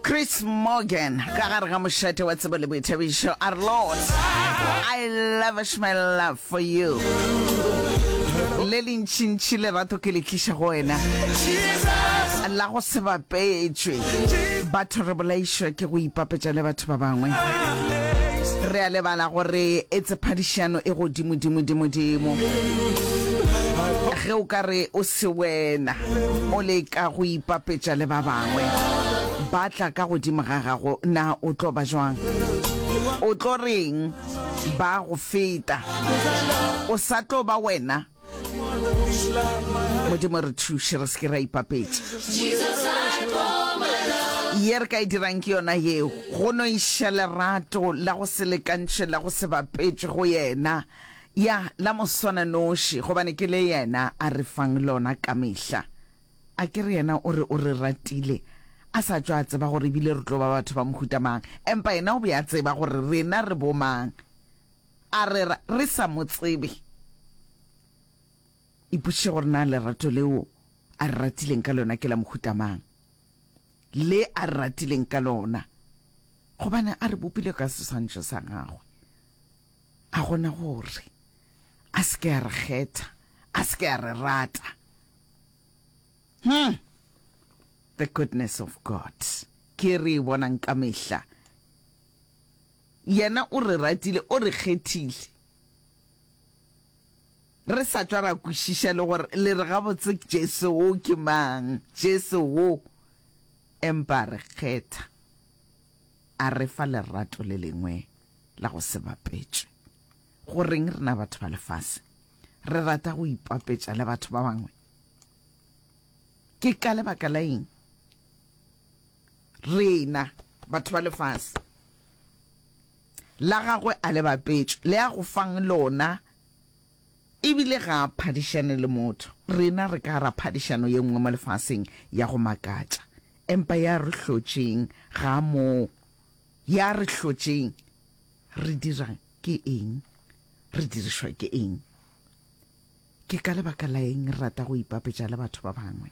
Chris Morgan ka gare ga mošate wa tsebo le boithabišo a re Lord I lavish my love for you le lentšintši lerato ke le tliša go wena la go se bapetšwe batho re bolaišwa ke go ipapetša le batho ba bangwe re a lebala gore e tsephadišano e godimodimodimodimo ge o ka re o Se wena o leka go ipapetša le ba bangwe ba tla ka godimo ga gago, na o tlo ba bjang? O tlo reng ba go feta? O sa tlo ba wena. Modimo re thuše re se ke ra ipapetša. Ye re ka e dirang ke yona yeo, go no iša lerato la go se lekantšhwe la go se bapetšwe go yena. Ya, la Moswananoši, gobane ke le Yena a re fang lona ka mehla. A ke re Yena o re o re ratile, A sa tšwa a tseba gore ebile re tlo ba batho ba mohuta mang, empa Yena o be a tseba gore rena re bomang. A re ra, re sa Mo tsebe. Ipotšiše gore na lerato leo A re ratileng ka lona ke la mohuta mang, le A re ratileng ka lona gobane A re bopile ka seswantšho sa Gagwe. A gona gore a se ke a re kgetha, a se ke a re rata? Hm! The goodness of God ke e re e bonang ka mehla. Yena o re ratile, o re kgethile, re sa tšwa ra kwešiša le gore le re gabotse Jesu wo ke mang, Jesu wo, empa a re kgetha. A re fa lerato le lengwe la go se bapetšwe. Goreng rena batho ba lefase re rata go ipapetša le batho ba bangwe? Ke ka lebaka la eng rena batho ba lefase la gagwe a le bapetšwe le a go fang lona ebile ga a phadišane le motho? Rena re ka ra phadišano ye nngwe mo lefaseng ya go makatša. Empa ya re hlotšeng ga moo. Ya re hlotšeng. Re dirang? Ke eng? Re dirišwa ke eng? Ke ka lebaka la eng re rata go ipapetša le batho ba bangwe?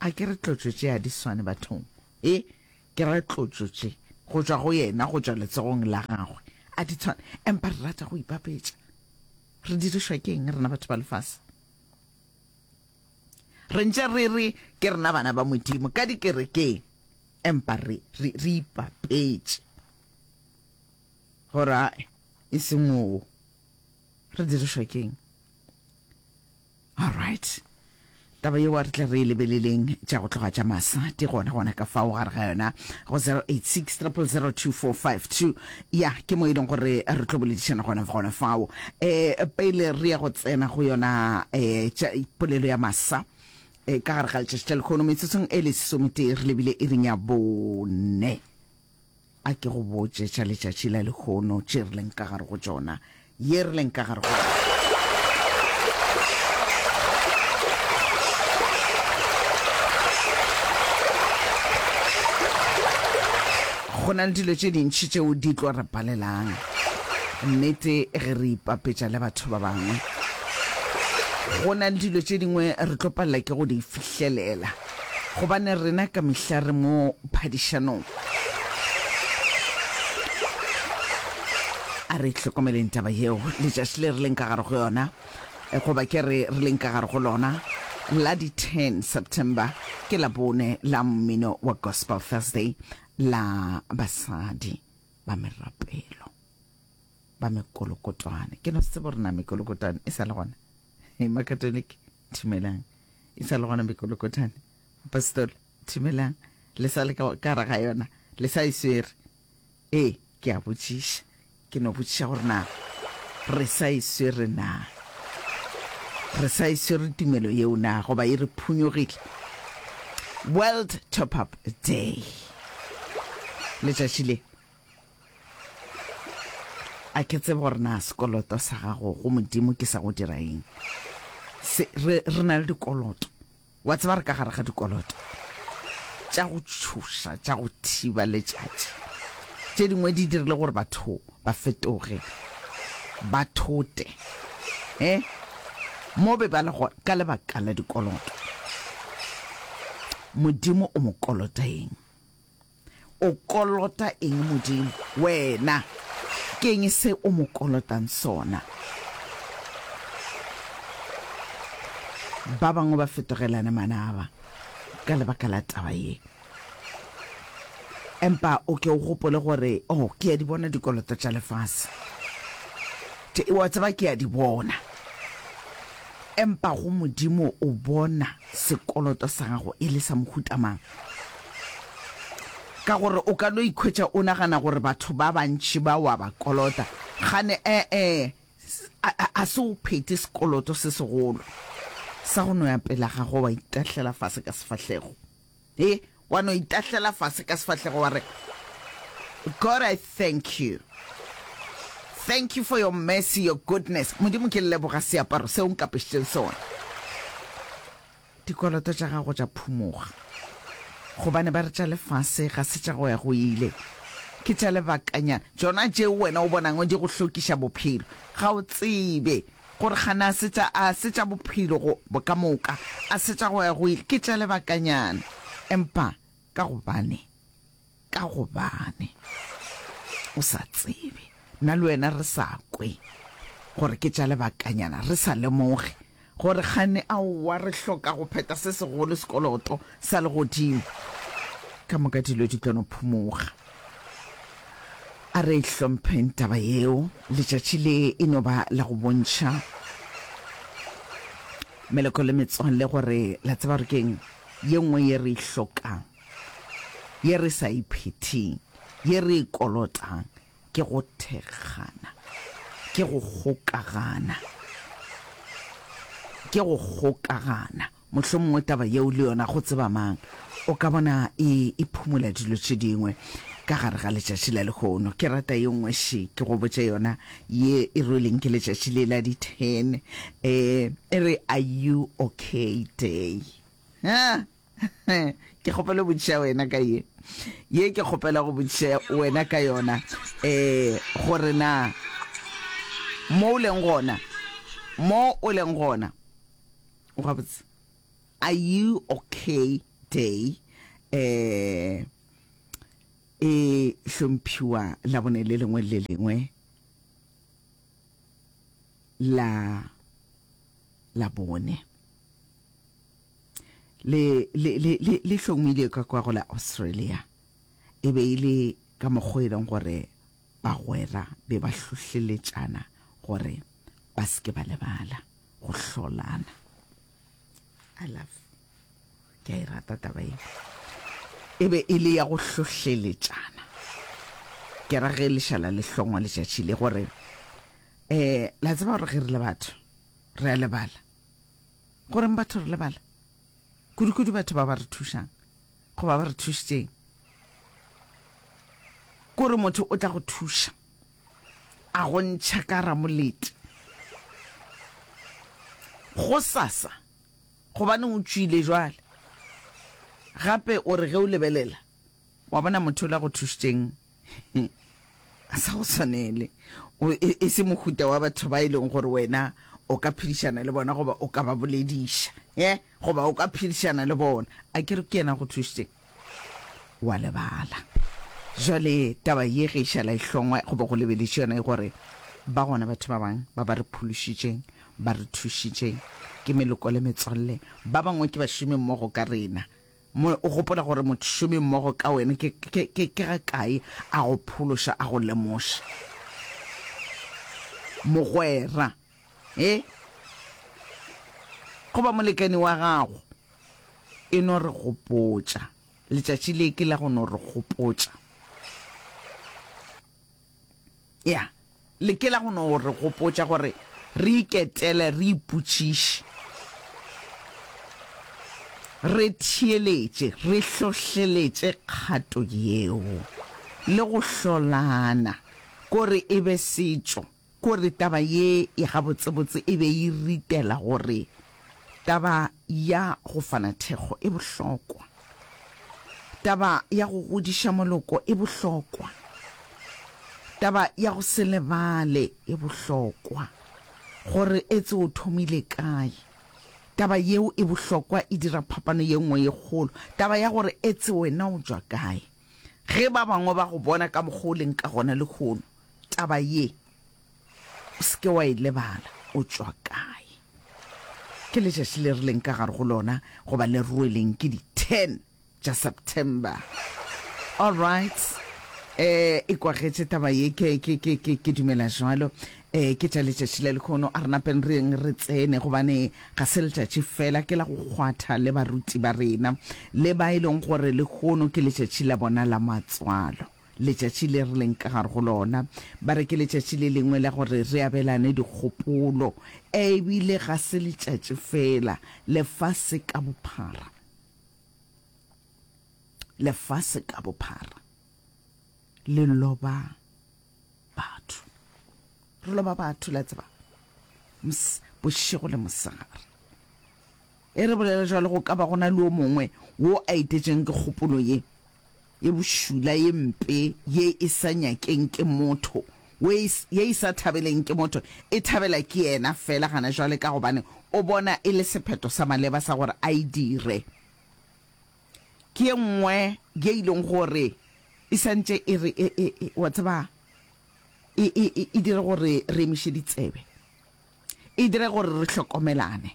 A ke re tlotšo tše a di swane bathong? E ke ra tlotšo tše go tšwa go yena, go tšwa letsogong la gagwe, a di tshwane. Empa re rata go ipapetša. Re dirišwa ke eng rena batho ba lefase? Re ntše re re ke rena bana ba Modimo ka dikerekeng, empa re, re, re ipapetše gore ae, e se moo. Re dirišwa keng? All right. taba yeo re tla re e lebeleleng tša go tloga tša masa di gona gona ka fao gare ga yona go 086 000245 Ya, ke mo e leng gore re tlo boledišana gona gona fao. Um pele re ya go tsena go yona um polelo ya masa um ka gare ga letšatši tša lekgono metsotsong e le sesometee re lebile e reng ya bone a ke go botše tša letšatši la lekgono tše re leng ka gare go tšona ye re leng ka gare go yona. Go na le dilo tše dintši tšeo di tlo re palelang nnete ge re ipapetša le batho ba bangwe. Go na le dilo tše dingwe re tlo palela ke go di fihlelela. Gobane rena ka mehla re mo phadišanong. A re hlokomeleng taba yeo, letšatši le re leng ka gare go yona, goba ke re re leng ka gare go lona, la di 10 September, ke la bone la mmino wa Gospel Thursday, la basadi ba merapelo ba mekolokotwane. Ke no tsebo re na mekolokotwane e sa le gona, Makatoliki. Thimelang. E sa le gona mekolokothane. Mopastola, Thimelang, le sa le ka gare ga yona? Le sa e swere? Ee, ke a botšiša. Ke no botšiša gore na re sa e swere na. Re sa e swere tumelo yeo na, goba e re phunyogile. World Top-Up Day. Letšatši le A ke tsebe gore na sekoloto sa gago go Modimo ke sa go dira eng. Se, re, re na le dikoloto. Wa tseba re ka gare ga dikoloto tša go tšhoša, tša go thiba letšatši. Tše dingwe di dirile gore batho ba fetoge, ba thote, eh, mo be ba le gona ka lebaka la dikoloto. Modimo o mo kolota eng? O kolota eng Modimo? Wena. Ke eng se o mo kolotang sona? Ba bangwe ba fetogelane manaba ka lebaka la taba ye. Empa o ke o gopole gore, Oh, ke a di bona dikoloto tša lefase. Te, wa tseba, ke a di bona. Empa go Modimo o bona sekoloto sa gago e le sa mohuta mang? Ka gore o ka no ikhwetša o nagana gore batho ba bantši ba wa ba kolota, gane ee, ga se o phete sekoloto se segolo sa go no ya pela ga go wa itahlela fase ka sefahlego. He, wa no itahlela fase ka sefahlego wa re, God, I thank you. Thank you for your mercy, your goodness. Modimo, ke leboga seaparo seo nkapešitšeng sona. Dikoloto tša gago tša phumoga, gobane ba re tša lefase ga se tša go ya go ile, ke tša lebakanyana, tšona tšeo wena o bonago di go hlokiša bophelo. Ga o tsebe gore gane a se tša, a se tša bophelo go, ka moka? A se tša go ya go ile? Ke tša lebakanyana, empa ka gobane. Ka gobane o sa tsebe, nna le wena re sa kwe gore ke tša lebakanyana, re sa lemoge gore kgane, aowa, re hloka go pheta se segolo, sekoloto sa legodimo. Ka moka dilo di tlo no phumoga. A re e hlompheng taba yeo. Letšatši le e no ba la go bontšha meloko le metswalle gore la tseba gore ke eng ye nngwe ye re e hlokang. Ye re sa e phetheng, ye re e kolotang, ke go thekgana, ke go kgokagana, ke go kgokagana. Mohlomongwe taba yeo le yona go tseba mang o ka bona e e phumola dilo tše dingwe ka gare ga letšatši la lehono. Ke rata ye nngwe še ke go botša yona ye e rweleng ke letšatši le la di ten um e re are you okay day. ke kgopela go botšiša wena ka ye ye ke kgopela go botšiša wena ka yona um gore na mo o leng gona mo o leng gona o gabotse are you okay day um e hlomphiwa labone le lengwe le lengwe la labone Le, le, le, le, le hlomilwe ka kwa go la Australia. E be e le ka mokgwa e leng gore bagwera be ba hlohleletšana gore ba se ke ba lebala go hlolana. I love. Ke a e rata taba e. E be e le ya go hlohleletšana. Ke ra ge lešala le hlongwa letšatši le gore eh la tseba gore ge re le batho re a lebala. Go reng batho re lebala? Kudukudu batho ba ba re thušang goba ba re thušitšeng. Kore motho o tla go thuša a go ntšha ka ramolete go sasa gobaneng o tšwile jwale. Gape o re ge o lebelela wa bona motho o la go thušitšeng a sa go tshwanele e, e se mohuta wa batho ba e leng gore wena o ka phedišana le bona goba o ka ba bolediša e goba o ka phedišana le bona a ke re ke yena go thušitše wa lebala jale taba ye ge e šala e hlongwa goba go lebeleše yona e gore ba gona batho ba bangwe ba ba re phološitšeng ba re thušitšeng ke meloko le metswalle ba bangwe ke bašomi mmogo ka rena Mo o gopola gore mošomi mmogo ka wena ke, ke, ke, ke ga kae a go phološa, a go lemoša. Mogwera, e, goba molekani wa gago, e no re gopotša. Letšatši le ke la go no re gopotša. Ya, le ke la go no re gopotša gore re iketele, re ipotšiše, re theeletše, re hlohleletše kgato yeo, le go hlolana, kore e be setšo, kore taba ye e gabotsebotse e be e ritela gore Taba ya go fana thekgo e bohlokwa. Taba ya go godiša moloko e bohlokwa. Taba ya go se lebale e bohlokwa, gore etse o thomile kae. Taba yeo e bohlokwa e dira phapano ye nngwe ye kgolo, taba ya gore etse wena o tšwa kae. Ge ba bangwe ba go bona ka mokgwa o leng ka gona lehono, taba ye O se ke wa e lebala o tšwa kae. Ke letšatši le re leng ka gare go lona goba le rweleng ke di 10 tša September. All right. Eh, e kwagetše taba ye, ke, ke, ke, ke, ke dumela jwalo. Eh, ke tša letšatši le lekhono, a re napeng re yeng re tsene, gobane ga se letšatši fela ke la go kgwatha le baruti ba rena, le ba e leng gore lekhono ke letšatši la bona la matswalo. letšatši le re leng ka gare go lona. Ba re ke letšatši le lengwe la gore re abelane dikgopolo, ebile ga se letšatši fela, lefase ka bophara. Lefase ka bophara le loba batho. Re loba batho, la tseba, bošego le mosegare. Ge re bolela jalo, go ka ba go na le yo mongwe wo a etetšweng ke kgopolo ye ye bošula, ye mpe, ye e sa nyakeng ke motho, wo e, ye e sa thabeleng ke motho, e thabela ke yena feela gana jwale ka gobane o bona e le sephetho sa maleba sa gore a e dire. Ke ye nngwe ye e leng gore e sa ntše e re, e, e, e, wa tseba, e, e, e, e dire gore re emiše ditsebe, e dire gore re hlokomelane.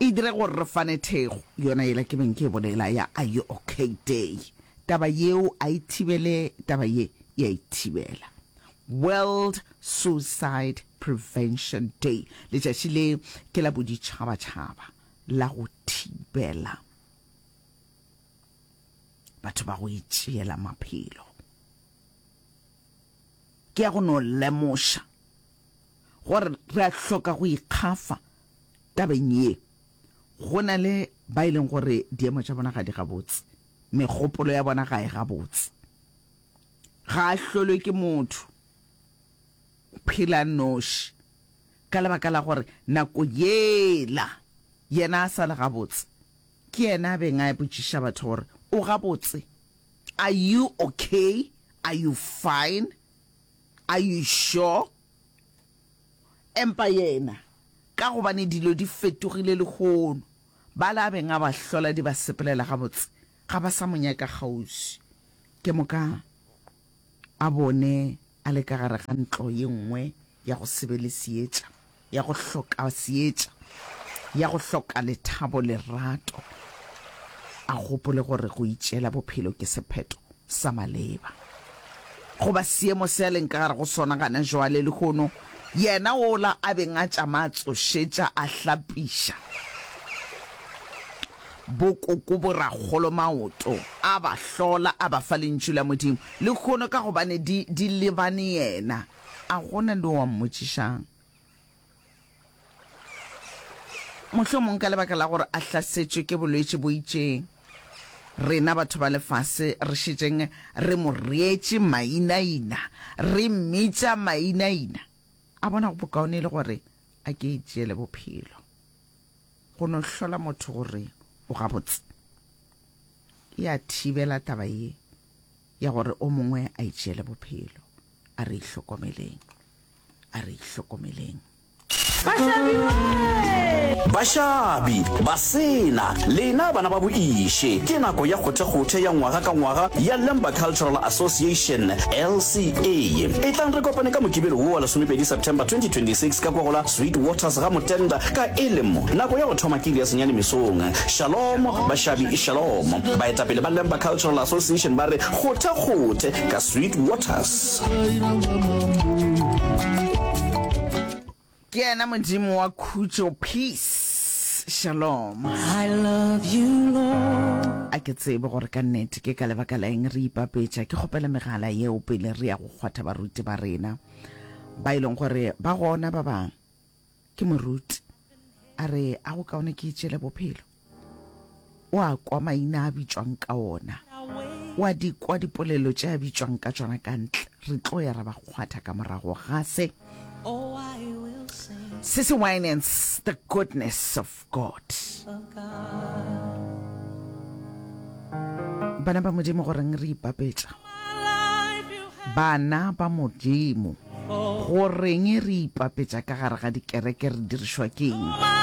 E dire gore re fane thekgo, yona yela ke beng ke e bolela ya Are You Ok Day. Taba yeo a e thibele, taba ye e a e thibela. World Suicide Prevention Day, letšatši le ke la boditšhabatšhaba la go thibela batho ba go itšeela maphelo. Ke ya go no lemoša gore re a hloka go ikgafa Tabeng ye, go na le ba e leng gore diemo tša bona ga di gabotse, megopolo ya bona ga e gabotse. Ga a hlolwe ke motho phela noši ka lebaka la gore nako yela yena a sa le gabotse ke yena a beng a botšiša batho gore o gabotse, are you okay, are you fine, are you sure? Empa yena, ka gobane dilo di fetogile lehono, bale a beng a ba hlola di ba sepelela gabotse, ga ba sa mo nyaka kgauswi. Ke moka a bone a le ka gare ga ntlo ye nngwe ya go se be le seetša, ya go hloka seetša, ya go hloka lethabo, lerato, a gopole gore go itšeela bophelo ke sephetho. sa maleba goba seemo se a leng ka gare go sona gana jwale. Lehono yena wola a beng a tšama a tsošetša, a hlapiša bokoko borakgolo maoto, a ba hlola, a ba fa Lentšu la Modimo. Lehono ka gobane di, di lebane yena, a gona le o a mmotšišang. Mohlomong ka lebaka la gore a hlasetšwe ke bolwetši bo itšeng, rena batho ba lefase re šetšeng re mo reetše mainaina, re mmitša mainaina. A bona go bokaone e le gore a ke itšeele bophelo go no hlola motho gore o gabotse? E a thibela taba ye. ya gore o mongwe a itšeele bophelo. A re ihlokomeleng. A re ihlokomeleng. Bašabi, basena, lena bana ba boiše, ke nako ya kgothekgothe ya ngwaga ka ngwaga ya Lemba Cultural Association, LCA. Etlang re kopane ka Mokibelo wo wa lesomepedi September 2026 ka kwa go la Sweet Waters ga Motenda ka e le mo nako ya go thoma ke iri ya senyane mesong. Shalom, bašabi. Shalomo. Baetapele ba Lemba Cultural Association ba re kgothe-kgothe ka Sweet Waters. Ke yena Modimo wa khutšo, peace, shalom. I love you, Lord. A ke tsebe gore ka nnete ke ka lebaka la eng re ipapetša. Ke kgopela megala yeo pele re ya go kgwatha baruti ba rena ba e leng gore ba gona ba bang ke moruti a re a go kaone ke itšele bophelo o a kwa maina a bitšwang ka ona o a di kwa dipolelo tše a bitšwang ka tšona ka ntle re tlo ya ra ba kgwatha ka morago ga se se se wine and the goodness of God. Bana ba Modimo goreng re ipapetša? Bana ba Modimo goreng re ipapetša ka gare ga dikereke re dirišwa ke eng?